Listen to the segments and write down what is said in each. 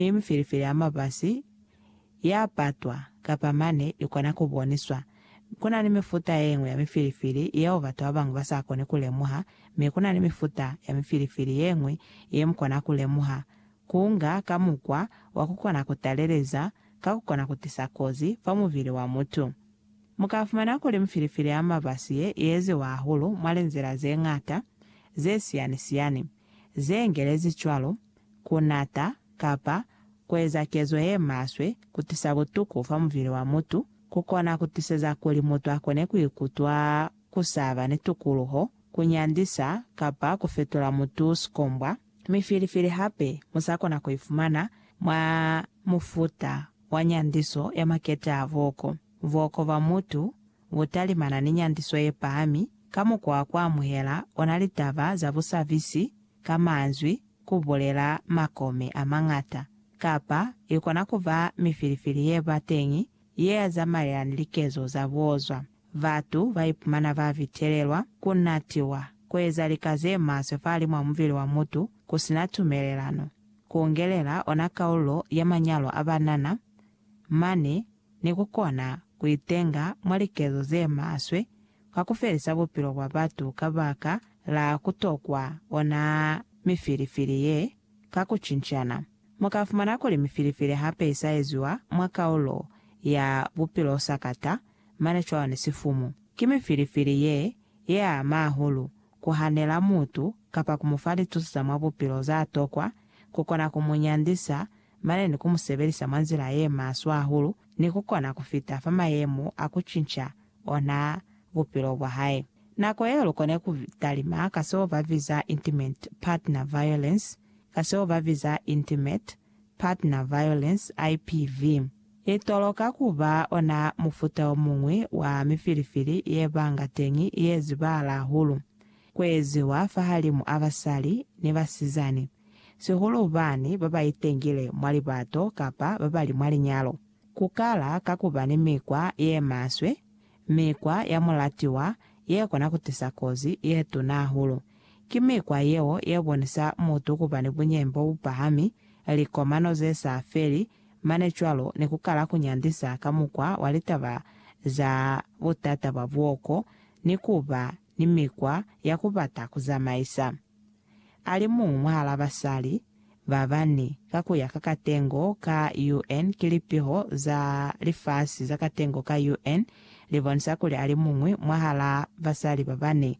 Mi mifilifili ya mabasi ya patwa kapa mane ikona ku boniswa. Kuna ni mifuta yeñwi ya mifilifili yeo batu babañwi ba sa koni ku lemuha, mi kuna ni mifuta ya mifilifili yeñwi ye mu kona ku lemuha, ku nga ka mukwa wa ku kona ku taleleza ka ku kona ku tisa kozi fa mubili wa mutu. Mu ka fumana kuli mifilifili ya mabasi ye i eziwa hahulu mwa linzila ze ñata ze siyani-siyani. ze ngelezi cwalo, ku nata, kapa ku eza kezo ye maswe, ku tisa butuku fa mubili wa mutu, ku kona ku tiseza kuli mutu a kone ku ikutwa ku saba ni tukuluho, ku nyandisa, kapa ku fetula mutu sikombwa, mi filifili hape mu sa kona ku ifumana mwa mufuta wa nyandiso ya makete a voko, voko ba mutu, Ku talimana ni nyandiso ye pahami ka mukwa wa ku amuhela ona litaba za busabisi ka manzwi ku bulela makome a mañata, kapa i kona ku ba mifilifili ye ba teñi ye ya zamaela ni likezo za buozwa. Batu ba ipumana ba bitelelwa ku natiwa, ku eza lika ze maswe fahalimw'a mubili wa mutu ku si na tumelelano, ku ngelela ona kaululo ya manyalo a banana Mane ni ku kona ku itenga mwa likezo ze maswe ka ku felisa bupilo bwa batu ka baka la ku tokwa ona mifilifili ye ka ku cincana. Mu ka fumana kuli mifilifili hape i sa eziwa mwa kaulo ya bupilo sakata mane cwalo ni sifumu. Ki mifilifili ye ye ama hahulu ku hanela mutu kapa ku mu fa lituso za mwa bupilo za tokwa ku kona ku mu nyandisa mane ni ku mu sebelisa mwa nzila ye maswe hahulu ni ku kona ku fita fa mayemo a ku cinca ona bupilo bwa hae. Nako yeo lu kone ku talima ka seo ba biza intimate partner violence, ka seo ba biza intimate partner violence, IPV. I toloka ku ba ona mufuta o muñwi wa mifilifili ye banga teñi ye zibahala hahulu. kueziwa fahalimu a basali ni basizani, sihulu bani babaitengile mwa libato kapa babali mwa linyalo, kukala ka kuba ni mikwa yemaswe, mikwa ya mulatiwa yekona kutisa kozi yetuna hahulu. Ki mikwa yeo yebonisa mutu kuba ni bunyeñi bobupahami, likomano zesa feli, mane cwalo ni kukala kunyandisa ka mukwa wa litaba za butata bwa buoko ni kuba ni mikwa ya ku bata ku zamaisa. A li muñwi mwahal'a basali ba bani ka ku ya ka katengo ka UN ki lipiho za lifasi za katengo ka UN li bonisa kuli a li muñwi mwahal'a basali ba bani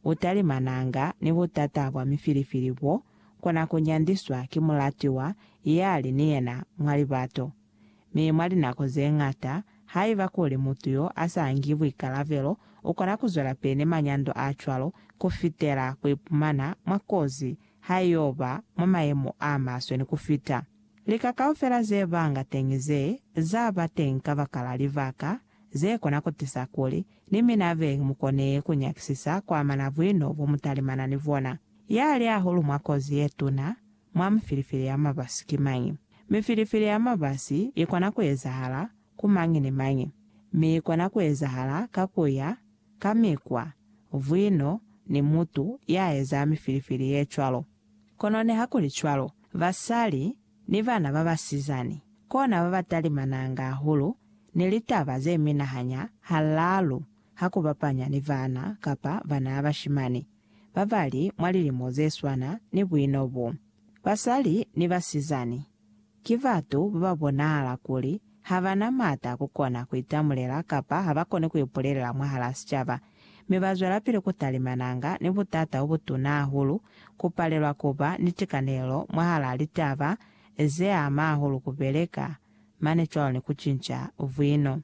u talimananga ni butata bwa mifilifili bo kona ku nyandiswa ki mulatiwa ya li ni yena mwa libato. Mi mwa linako ze ñata, haiba kuli mutu yo a sa ngi buikalabelo u kona ku zwelapili ni manyando a cwalo ku fitela ku ipumana mwa kozi ha i yo ba mwa mayemo a maswe ni ku fita. Lika kaufela ze banga teñi ze za ba teñi kabakala libaka ze kona ku tisa kuli ni mina be mu kone ku nyakisisa ku amana buino bo mu talimana ni bona, ya li hahulu mwa kozi ye tuna, mwa mifilifili ya mabasi ki mañi? Mifilifili ya mabasi i kona ku ezahala ku mañi ni mañi, mi i kona ku ezahala ka ku ya ka mikwa, vwino, ni mutu ya eza mifilifili ye cwalo. Kono nihakulicwalo, basali ni bana ba basizani kona ba ba talimananga hahulu ni litaba ze minahanya halaalu ha ku bapanya ni bana kapa bana bashimani. babali mwa lilimo zeswana ni buino bo, basali ni basizani, ki batu bababonahala kuli habana maata akukona kuitamulela kapa habakoni kuipulelela mwahalaa sicaba, mi bazwelapili kutalimananga ni butata bobutuna hahulu, kupalelwa kuba ni tikanelelo mwahalaa litaba zeama hahulu kubeleka mane cwalo ni ku cinca vwino.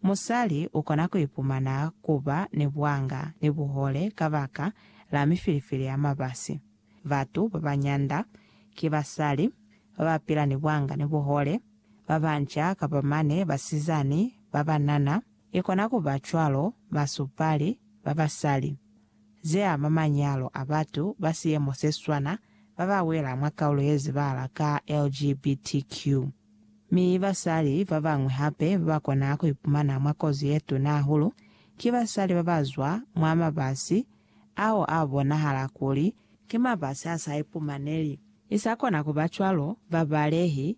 Musali u kona ku ipumana ku ba ni bwanga ni buhole kabaka la mifilifili ya mabasi. Batu ba ba nyanda ki basali ba ba pila ni bwanga ni buhole, ba banca kapa mane basizani ba banana. I kona ku ba cwalo basupali ba basali zeama manyalo a batu ba siemo seswana babawela mwa kaulo yezibala ka LGBTQ. Mi basali babañwi hape babakona kuipumana mwa kozi yetuna hahulu ki basali babazwa mwa mabasi ao abonahala kuli ki mabasi asaipumaneli. Isakona kuba cwalo, babalehi